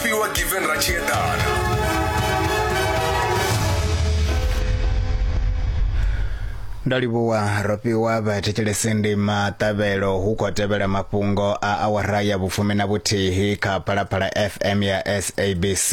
fhiwa given ra tshi eḓana ndo livhuwa ro fhiwa vhathetshelesi ndi maṱavhelo hu khou tevhela mafhungo a awara ya vhufumi na vhuthihi kha phalaphala fm ya sabc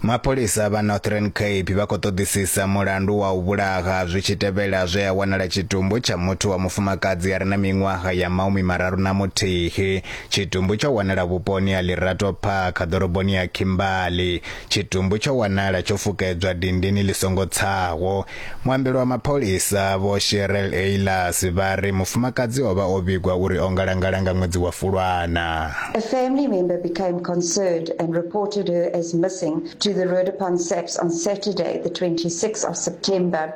mapholisa vha northern cape vha khou ṱoḓisisa mulandu wa u vhulaha zwi tshi tevhela zwe a wanala tshitumbu tsha muthu wa mufumakadzi a re na miṅwaha ya maumi mararu na muthihi Tshitumbu tsho wanala vhuponi ha Lirato Park, ḓoroboni ya Kimberley. Tshitumbu tsho wanala tsho fukedzwa dindini ḽi songo tsaho. Muambeli wa mapholisa, Vho Cheryl Aylas, vha ri mufumakadzi o vha o vhigwa uri o ngalangala nga ṅwedzi wa Fulwana. A family member became concerned and reported her as missing to the Roodepoort SAPS on Saturday, the 26th of September.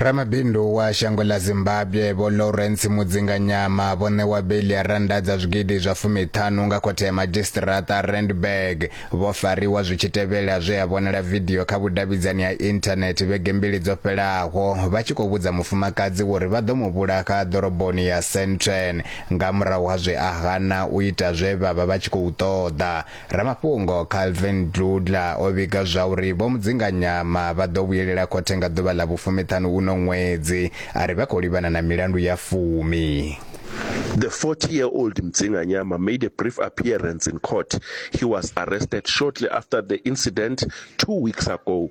ramabindu wa shango ḽa zimbabwe vho lawrence mudzinganyama vho ṋewa beli ya rannda dza zwigidi zwa fumiṱhanu nga khothe ya madzhisiṱiraṱa randburg vho fariwa zwi tshi tevhela zwe ya vhonala vidio kha vhudavhidzani ha inthanethe vhege mbili dzo fhelaho vha tshi khou vhudza mufumakadzi uri vha ḓo mu vhulaha ḓoroboni ya centren nga murahu ha zwe a hana u ita zwe vha vha vha tshi khou ṱoḓa Ramafhungo Calvin Dudla o vhiga zwa uri Vho Mudzinganyama vha ḓo vhuyelela khothe nga ḓuvha ḽa vhufumiṱhanu uno ṅwedzi a ri vha khou livhana na milandu ya fumi. The 40-year-old Mdzinganyama made a brief appearance in court. He was arrested shortly after the incident two weeks ago.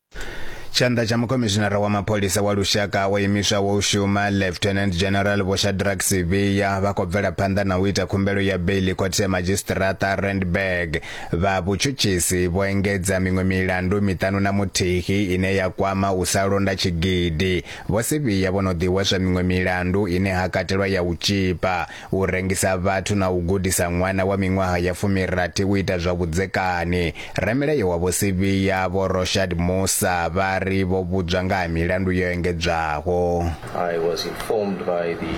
Tshanḓa tsha mukhomishinara wa mapholisa wa lushaka wa imiswaho u shuma Lieutenant General Vho Shadrack Sibiya vha khou bvela phanḓa na u ita khumbelo ya beili khothe ya madzhisiṱiraṱa Randburg. Vha vhutshutshisi vho engedza miṅwe milandu miṱanu na muthihi ine ya kwama u sa londa tshigidi. Vho Sibiya vho no ḓihweswa miṅwe milandu ine ha katelwa ya u tzhipa. u rengisa vhathu na u gudisa ṅwana wa miṅwaha ya fumirathi u ita zwa vhudzekani. Ramilayo wa vho Sivhiya vho Roshad Musa vha ri vho vhudzwa nga ha milandu yo engedzwaho. I was informed by the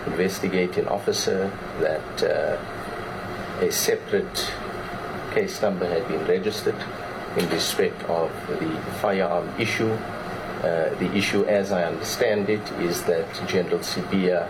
investigating officer that uh, a separate case number had been registered in respect of the firearm issue. Uh, the issue, as I understand it, is that General Sibia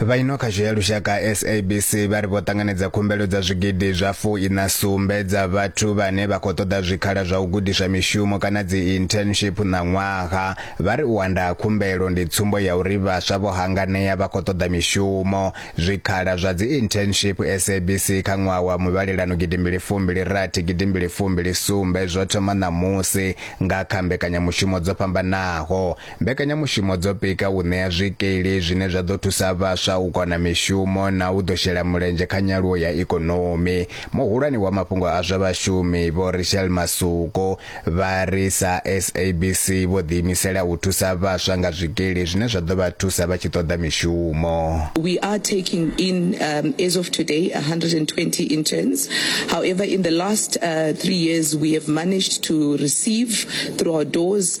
vha ino khasho ya lushaka sabc vha ri vho ṱanganedza khumbelo dza zwigidi zwa fu ina sumbe dza vhathu vhane vha khou ṱoḓa zwikhala zwa u gudiswa mishumo kana dzi internship na ṅwaha vha ri u anda ha khumbelo ndi tsumbo ya uri vhaswa vho hanganea vha khou ṱoḓa mishumo zwikhala zwa dzi internship sabc kha ṅwaha wa muvhalelano gidimbili fumbili rathi gidimbili fumbili sumbe zwo thoma ṋamusi nga kha mbekanyamushumo dzo fhambanaho Mbekanyamushumo dzo pika u ṋea zwikili zwine zwa ḓo thusa vhaswa u kona mishumo na u ḓo shela mulenzhe kha nyaluwo ya ikonomi. Muhulwane wa mafhungo a zwa vhashumi, Vho Richelle Masuku, vha ri sa SABC vho ḓiimisela u thusa vhaswa nga zwikili zwine zwa ḓo vha thusa vha tshi ṱoḓa mishumo. We are taking in um, as of today 120 interns. However, in the last uh, three years we have managed to receive through our doors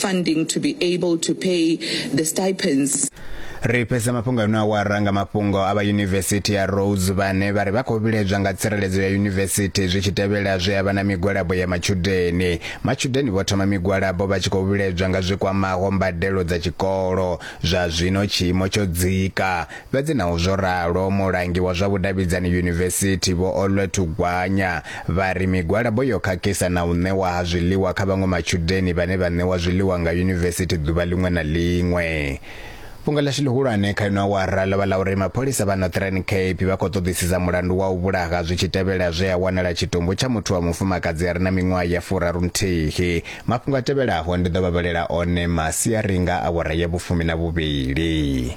funding to be able to pay the stipends. Ri fhedza mafhungo ano awara nga mafhungo a vha yunivesithi ya Rhodes vhane vha ri vha khou vhiledzwa nga tsireledzo ya yunivesithi zwi tshi tevhela zwe havha na migwalabo ya matshudeni. Matshudeni vho thoma migwalabo vha tshi khou vhiledzwa nga zwi kwamaho mbadelo dza tshikolo. Zwa zwino tshiimo tsho dzika. Fhedzi naho zwo ralo, mulangi wa zwa vhudavhidzani yunivesithi, Vho Olwethu Gwanya, vha ri migwalabo yo khakhisa na u ṋewa ha zwiḽiwa kha vhaṅwe matshudeni vhane vha ṋewa zwiḽiwa nga yunivesithi ḓuvha ḽiṅwe na ḽiṅwe. Fhungo ḽashu ḽihulwane kha ino awara ḽo vha ḽa uri mapholisa vha Northern Cape vha khou ṱoḓisisa mulandu wa u vhulaha zwi tshi tevhela zwe ha wanala tshitumbu tsha muthu wa mufumakadzi a re na miṅwaha ya furarunthihi. Mafhungo a tevhelaho ndi ḓo vha vhalela one masiari nga awara ya vhufumi na vhuvhili.